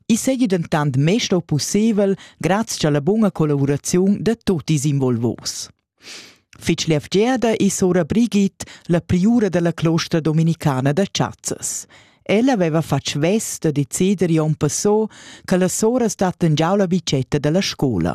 I seigi dentant mê stau pusseivel grazia alla bunga collaboraziun da tutti ils involvos. Fitg levgiada e sora Brigitte, la priura dalla closta dominicana da Chazzas. Ella aveva fatg vest da decider Jon Passot che la sora stat en giau la bicetta dalla scola.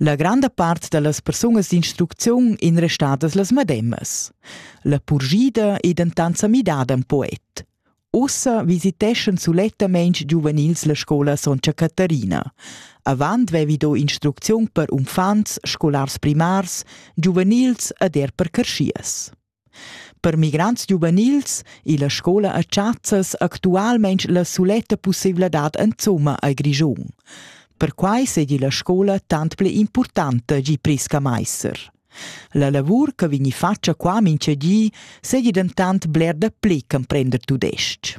La granda part da las persunas d'instrucziun ein restadas las medemas. La purschida ei dentant sa midada en poet. Ussa visiteschan sulettamein giuvenils la scola Sontga Caterina. Avant vevi do instrucziun per uffants, scolars primars, giuvenils ed er per carschias. Per migrants giuvenils illa scoula a Tschazas actualmaing la suletta pussaivladad insomma al Grischun. Perquai seigi la scoula tant pli importanta gi Prisca Meister. La lavur che vegni fatga qua mincha di seigi dentant bler da pli ch'emprender tudestg.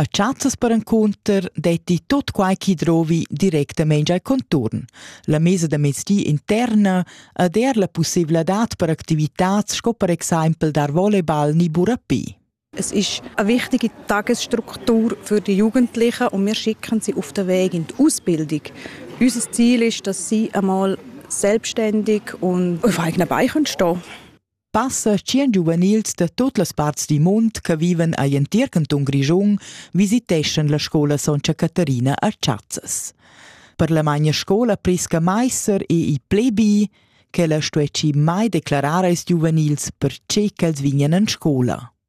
A chazzas perencunter detti tot quai chi drovi directamaing al conturn. La mesa da mezdi interna ed er la pussevladad per activitats sco per exaimpel dar volleyball ni burapé. Es ist eine wichtige Tagesstruktur für die Jugendlichen und wir schicken sie auf den Weg in die Ausbildung. Unser Ziel ist, dass sie einmal selbstständig und auf eigenen Beinen stehen können. Passa tschien giuvenils da tut las parts dil mund che viven egl entir cantun Grischun visiteschan la scola Sontga Caterina a Chazzas. Per la magna scola Prisca Meiser e il plebi, quella stuessi mai declarar als giuvenils per tge ch'els vignan en scola.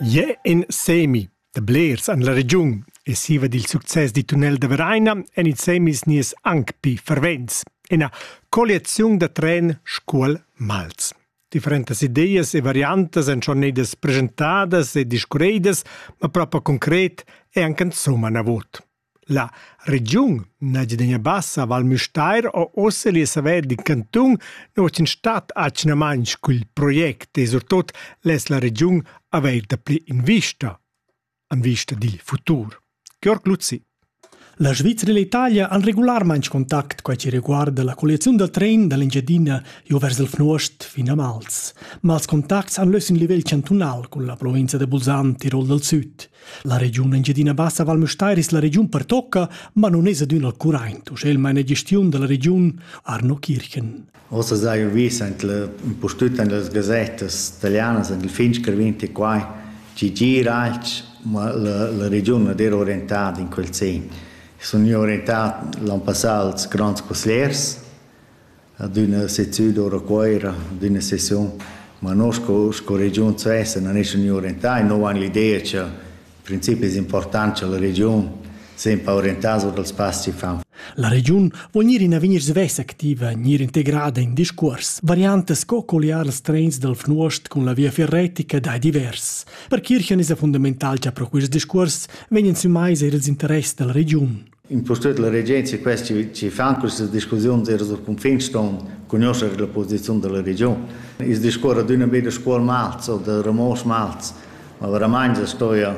Jeu in semi da blers en la regiun e siva dil success di tunnel da Vereina en ils semis nies anc pi fervents. Ina colliaziun da tren Scuol-Mals. Differentas ideas e variantas èn schon nedas presentadas e discurredas, ma propa concret è anche insomma navot. La regiun Engiadina Bassa Val Müstair ho ussa lieu saver d'in cantun nouv in stat atgnamaing cul project e surtot less la regiun avair dapli invista in vista dil futur. Georg Luzzi. La Svizra e l'Italia han regularmaing contact quai chi reguarda la colliaziun dal tren da l'Engiadina jo vers il Fnuost fin a Mals. Ma els contacts han lös in livel chantunal cun la provinza da Bulsan, Tirol dal Süd. La regiun Engiadina Bassa Val Müstair es la regiun pertocca, ma non es adüna al curaint, uschè il maina gestiun da la regiun Arno Kirchen. Ossa sai vis in pustüt in las gazettas italianas, in il Finsker 24, ci gira alch, ma la, la regiun non era orientada in quel sen. Sun orientat l'an passat als grands consigliers, ad üna seziun d'or a Cuoira, ad üna sesiun, ma no sco, sco regiun svessa non es gnü orientà e nou han l'idea cha in principi es important cha la regiun semper orientà sur dals pass chi fan. La regiun vuol gnir in avegnir svess activa, gnir integrada in discuors. Variantas sco colliar ils trens dal Fnuost cun la via ferretica dai divers. Per Kirchen es fundamental cha pro quist discuors vegnan sü mais eir ils interess da la regiun. impustüt la regenza quest chi fan quistas discussiuns eir sul cunfin ston cugnuoscher la posiziun da la regiun. I's discuorra d'üna be da Scuol Malz o da Ramosch Malz, ma veramaing as stoja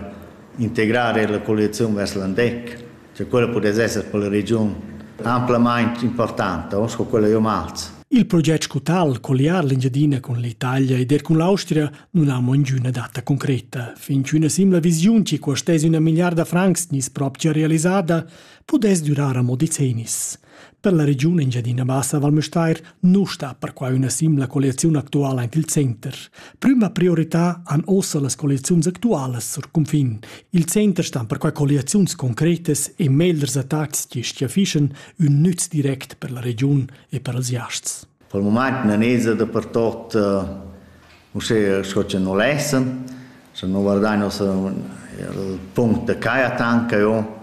integrar eir la colliaziun vers l'Andec, che quella pudess esser per la regiun amplamaing importanta, sco quella jo Malz. Il proget scu tal, colliar l'Engiadina cun l'Italia ed er cun l'Austria, nun ha mo ingüna data concreta. Fin ch'üna simla visiun, chi costess üna milliarda francs, gnisse propcha realisada, pudess durar amo decennis. Per la regiun Engiadina Bassa Val Müstair nu sta perquai üna simla colliaziun actuala anche il center. Prüma priorità han ossa las colliaziuns actualas sur cunfin. Il center sta perquai colliaziuns concretas e meglers attacks chi schiaffischen ün nüz direct per la regiun e per els jasts. Pel mumaint na n'esa dapertot uschè sco cha nu l'esen. Scha nu vardain uossa il punct da Caja Tanca io,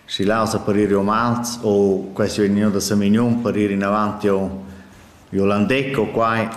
schi là uossa per iri umans o quest vegni gnü da Samignun per iri inavant io giò Landec o quai,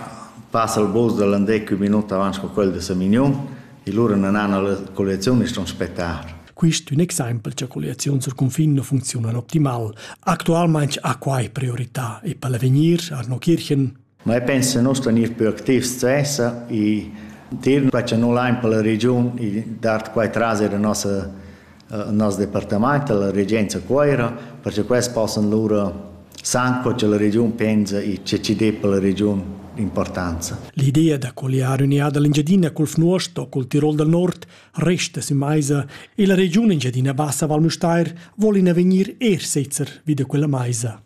passa il bus da Landec ün minut avant sco quel da Samignun e lura na nan la colleziun e stun spetar. Quist ün exaimpel cha colliaziuns sul cunfin nu funcziunan optimal. Actualmaing ha quai priorità e per l'avegnir Arno Kirchen Ma io penso che noi stanno più attivi stessa e dir che noi l'hain per la regiun e dar quai tras la nostra il nostro departamento, la regenza Coira, perché questi possono loro san che la region pensa e che ci dà per la region importanza. L'idea da colliare un'idea dell'Engiadina col Fnuosto, col Tirol del Nord, Resta sü maisa e la regiun Engiadina Bassa Val Müstair vol ina vegnir er sezzer vi da quella maisa.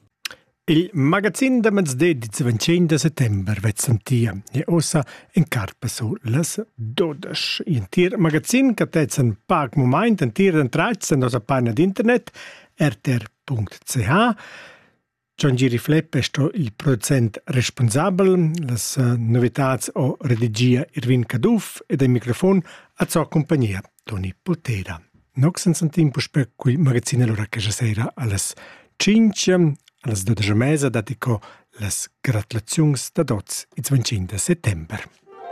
Il magazin da mezde di 25 de settembre vezzam tia e ossa en carpaso las 12. In tir magazin che tezzan pac moment en tir d'entrats en nosa pagina d'internet rtr.ch Jon Gieri Flepp è sto il producent responsabel. Las novitads ho redigia Irvin Caduff ed il microfon a sua compagnia Toni Potera. Nox en san tempo per cui magazine l'ora che sera alles 5 alles 12 mesa datico las gratulazions da dots il 25 settembre.